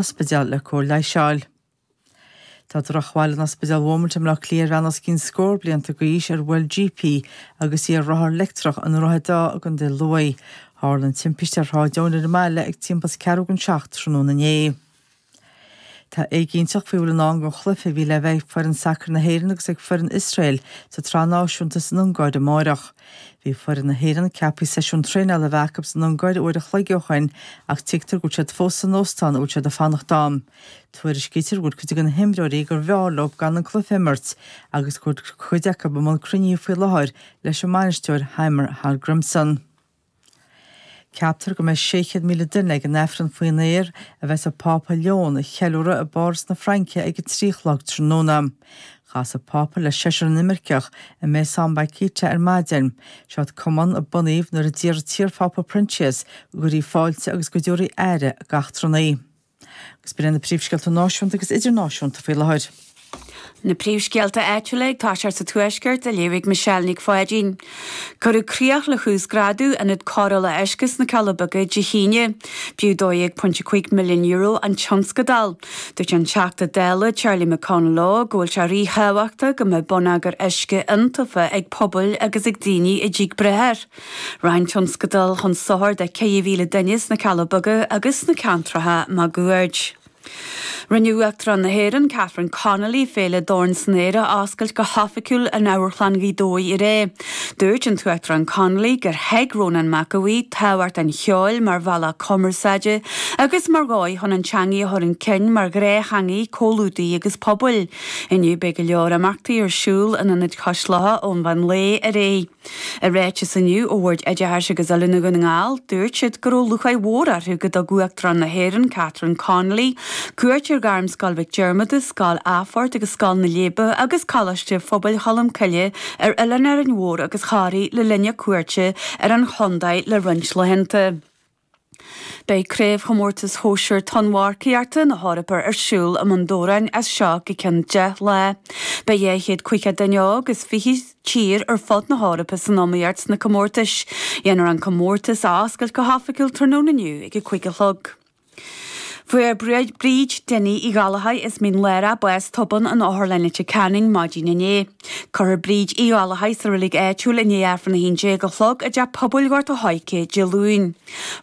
ospidéal le cóir leighis a fháil. Tá drochbhail in Ospidéal Beaumont i mBleá Cliath ar bhean os cionn scór blianta d'aois ar bhuail jeep í agus í ar rothar leictreach i nDroichead Átha i gContae Lughaidh. Tharla an timpiste ar Shráid Eoin ar an mbaile ag timpeall ceathrú don seacht tráthnóna inné. Tá éiginnteacht faoi a bhfuil i ndán don chluiche a bhí le bheith ag foireann sacair na hÉireann agus ag foireann Iosrael sa tSraith Náisiúnta san Ungáir amáireach. Bhí foireann na hÉireann ceaptha seisiún traenála a bheith acu san Ungáir uair a chloig ó shin ach tuigtear go bhfuil siad fós san óstán a bhfuil siad ag fanacht ann. Tuairiscítear go bhfuil cuid de na himreoirí gurbh fhearr leo gan an cluiche a imirt agus go bhfuil cuid acu i mbun cruinnithe faoi láthair leis an mbainisteoir Heimir Hallgrimsson. Ceaptar go mbeidh 600,000 duine ag an Aifreann faoin aer a bheas an Pápa Leon a cheiliúradh i bPáras na Fraince ag a trí a chlog tráthnóna. Chas an Pápa le seisear inimirceach i Maison Bakhita ar maidin. Seod cumann a bunaíodh nuair a d'iarr an t-iarPhápa Proinsias go gcuirfí fáilte agus go dtabharfaí aire d'eachtrannaigh. Agus b'in iad na príomhscéalta náisiúnta agus idirnáisiúnta faoi láthair. Na príomhscéalta áitiúla ag toiseacht sa Tuaisceart á léamh ag Michelle Nic Pháidín. Cuireadh críoch le huasghrádú Ionad Cóireála Uisce sna Cealla Beaga Dé hAoine. B'fhiú €12.5 milliún an tionscadal. Dúirt an Teachta Dála Charlie McConalogue go bhfuil sé ríthábhachtach go mbeadh bonneagar uisce iontaofa ag pobail agus ag daoine atá ag brath air. Rachaidh an tionscadal chun sochair do 4,000 duine sna Cealla Beaga agus sna ceantracha maguaird. Rinne Uachtarán na hÉireann, Catherine Connolly, Féile Dorn san Aer a oscailt go hoifigiúil in Amharclann Ghaoth Dobhair aréir. Dúirt an tUachtarán Connolly gur thuig Rónán Mac Aoidh tábhacht an cheoil mar bhealach cumarsáide agus mar dhóigh chun an teangaidh a chur chun cinn mar ghnáth-theangaidh comhluadair agus pobail. Inniu beidh go leor imeachtaí ar siúl in Ionad Cois Locha ón mheán lae ar aghaidh. I ráiteas inniu ó Bhord Oideachais agus Oiliúna Dhún na nGall, dúirt siad go raibh lúcháir mhór orthu go dtug Uachtarán na hÉireann, Catherine Connolly, cuairt ar Ghairmscoil Mhic Diarmada, Scoil Athphoirt agus Scoil na Leidhbe agus Coláiste Phobail Cholmcille ar Oileán Árainn Mhór agus Thoraí le linn a cuairte ar an chontae le roinnt laethanta. Beidh Craobhchomórtas Shóisir Tonnmharcaíochta na hEorpa ar siúl i mBun Dobhráin as seo go cionn deich lá. Beidh dhá chéad caoga duine óg as fiche tír ar fud na hEorpa san iomaíocht sna comórtais. Déanfar an comórtas a oscailt go hoifigiúil tráthnóna inniu ag a cúig a chlog. Fuair Bríd Dinny Uí Ghallchóir as Mín Lárach bás tobann in Otharlann Leitir Ceanainn maidin inné. Cuirfear Bríd Uí Ghallchóir sa reilig áitiúil i ndiaidh Aifreann 11 a chlog i dTeach Pobail Ghort a' Choirce Dé Luain.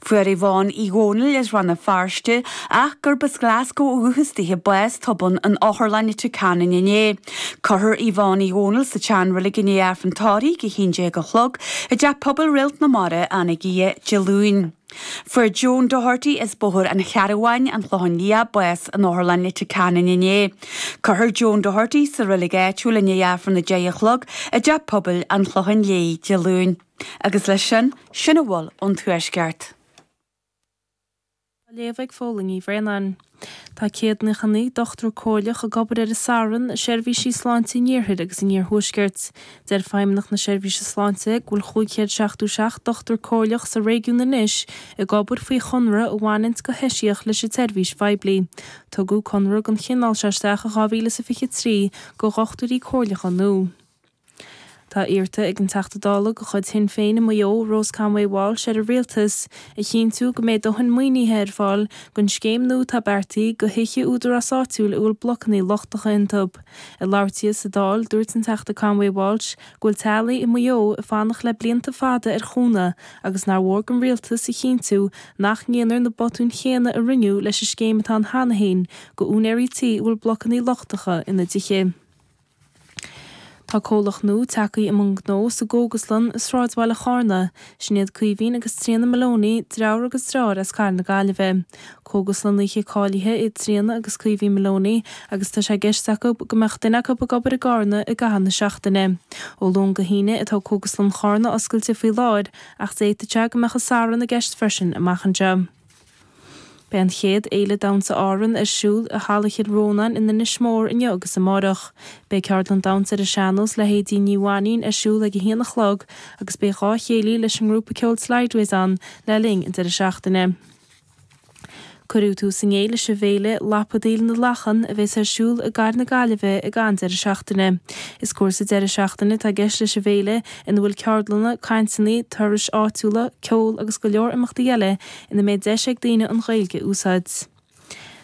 Fuair Yvonne Uí Dhomhnaill as Rann na Feirste, ach gurb as Glascó ó dhúchas di, bás tobann in Otharlann Leitir Ceanainn inné. Cuirfear Yvonne Uí Dhomhnaill sa tseanreilig i ndiaidh Aifreann tórraimh 11 a chlog i dTeach Pobail Réalt na Mara, Anagaire, Dé Luain. Fuair John Doherty as Bóthar an Chairn Mháirtín, An Clochán Liath, bás in Otharlann Leitir Ceanainn inné. Cuirfear John Doherty sa reilig áitiúil i ndiaidh Aifreann a deich a chlog i dTeach Pobail an Chlocháin Léith Dé Luain. Agus leis sin, sin a bhfuil ón Tuaisceart. Á léamh ag Phóilín Uí Bhraonáin. Tá céad naocha naoi dochtúir Comhairleach, ag obair ar an Satharn i seirbhísí sláinte an Iarthair agus an Iarthuaiscirt. Deir Feidhmeannach na Seirbhíse Sláinte go bhfuil 577 Dochtúir Comhairleach sa réigiún anois ag obair faoi chonradh a bhaineanns go heisiach leis an tseirbhís phoiblí. Tugadh conradh den chineál seo isteach in 2023 do Dhochtúirí Comhairleacha nua. Tá iarrta ag an Teachta Dála de chuid Shinn Féin i Maigh Eo, Rose Conway-Walsh ar an Rialtas a chinntiú go mbeidh dóthain maoinithe ar fáil don scéim nua atá beartaithe do thithe údarás áitiúil a bhfuil blocanna lochtacha iontu. Ag labhairt di sa Dáil, dúirt an Teachta Conway-Walsh go bhfuil teaghlaigh i Maigh Eo ag fanacht le blianta fada ar chúnamh agus nár mhór don Rialtas a chinntiú nach ndéanfar na botúin chéanna a rinneadh leis an scéim atá ann cheana féin do úinéirí tí a bhfuil blocanna lochtacha ina dtithe. Tá comhlacht nua tagthaí i mbun gnó sa gCógaslann i sráidbhaile Chárna. Sin iad Caoimhín agus Tríona Maloney, driofúr agus dreáir as cathair na Gaillimhe. Cógaslannaithe cáilithe iad Tríona agus Caoimhín Maloney agus tá sé i gceist acu go mbeadh duine acu ag obair i gCárna i gcaitheamh na seachtaine. Ó Luan go hAoine atá Cógaslann Chárna oscailte faoi láthair ach d'fhéadfadh sé go mbeadh an Satharn i gceist freisin amach anseo. Beidh an chéad Fhéile Damhsa Árann ar siúl i Halla Chill Rónáin in Inis Mór inniu agus amárach. Beidh ceardlann damhsa ar an sean-nós le hAedín Ní Mhainín ar siúl ag a haon a chlog agus beidh dhá chéilí leis an ngrúpa ceoil Slideways ann le linn an deireadh seachtaine. Cuireadh tús inné leis an bhféile Lapadaíl na Lachan a bheas ar siúl i gcathair na Gaillimhe ag an deireadh seachtaine. Is cúrsa deireadh seachtaine atá i gceist leis an bhféile ina bhfuil ceardlanna, cainteanna, turais áitiúla, ceol agus go leor imeachtaí eile ina mbeidh deis ag daoine an Ghaeilge a úsáid.